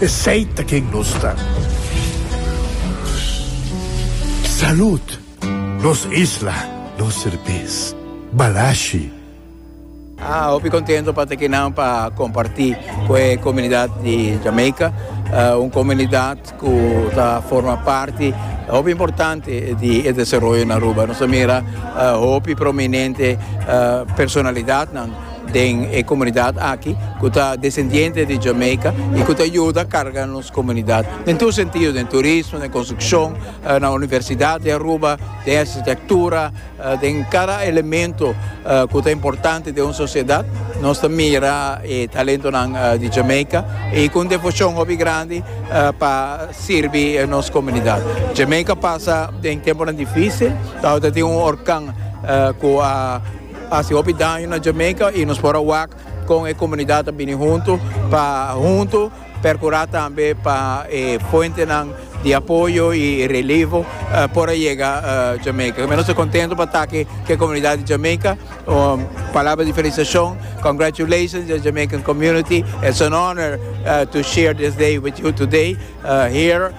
Esey ta ken nos ta. Salud! Nos isla, nos serbes. Balashi. A hopi contento pa tekinan pa comparti cu e comunidad di Jamaica. Un comunidad cu ta forma parti hopi importante di e desaroyo na Aruba. Nos a mira hopi prominente personalidadnan. Den e comunidad aki cu ta descendiente di Jamaica y cu ta yuda carga nos comunidad den tur sentido, den turismo, den construccion, na universidad di Aruba, den architectura, den cada elemento cu ta importante den un sociedad nos ta mira e talentonan di Jamaica y cu un devocion hopi grandi pa sirbi nos comunidad. Jamaica pasa den temponan dificil, tabata tin un horcan cu a. Hasi hopi daño na Jamaica y nos por a wak con e comunidad a bini hunto pa hunto percura tambe pa e fuentenan di apoyo y relevo por a yega Jamaica. Nos ta contento pa ta aki cu e comunidad di Jamaica. Palabra di felicitacion. Congratulations to the Jamaican community. It's an honor to share this day with you today here.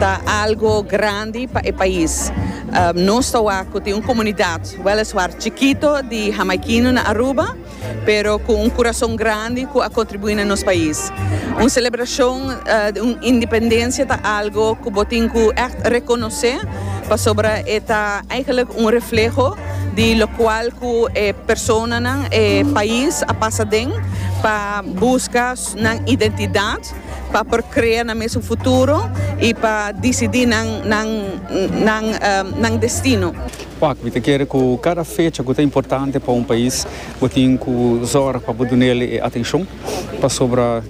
Ta algo grandi pa e pais. Nos ta wak cu tin un comunidad, weliswaar chikito, di Hamaikino na Aruba, pero cu un curason grandi cu a contribui na nos pais. Un celebracion di un independencia ta algo cu bo tin cu echt reconoce, pasobra e ta eigenlijk un refleho di locual cu e personanan, e pais a pasa den pa busca. nan identidad pa por crea nan mes un futuro y pa dicidi nan destino. Wak, mi ta kere cu cada fecha cu ta importante pa un pais bo tin cu zorg pa bo dunel e atencion, pasobra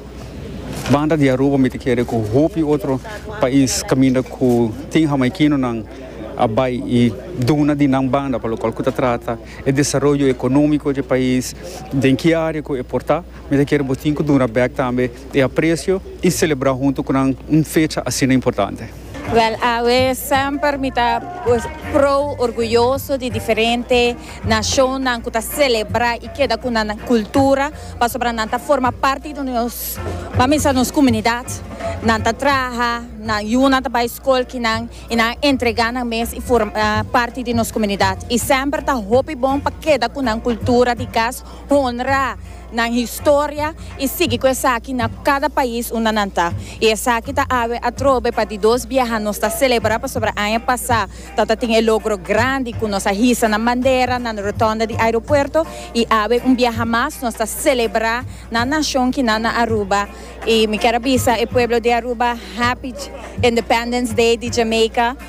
banda di Aruba mi ta kere cu hopi otro pais caminda cu tin Hamaikinonan a bay y duna di nan banda pa locual cu ta trata e desaroyo economico dje pais, den ki area cu e por ta. Mi ta kere botin ku duna bèk tambe e apresio i selebrá huntu ku nan un fecha asina importante. Wèl, awe semper mi ta prou orguyoso di diferente nashonnan ku ta selebrá i keda ku nan kultura, pasobra nan ta forma parti di nos pamesa nos komunidat. Nan ta traha, nan yunan ta bai skol ku nan i nan a entregá nan mes i forma parti di nos komunidat. I semper ta hopi bon pa keda ku nan kultura di kas. honra nan historia y sigui cu esaki na cada pais unda nan ta. Y esaki ta awe atrobe pa di dos biaha nos ta celebra pasobra aña pasa ta ta tin e logro grandi cu nos a hisa nan bandera na rotonda di aeropuerto y awe un biaha mas nos ta celebra nan nacion ki nan na Aruba y mi kier a bisa e pueblo di Aruba Happy Independence Day di Jamaica.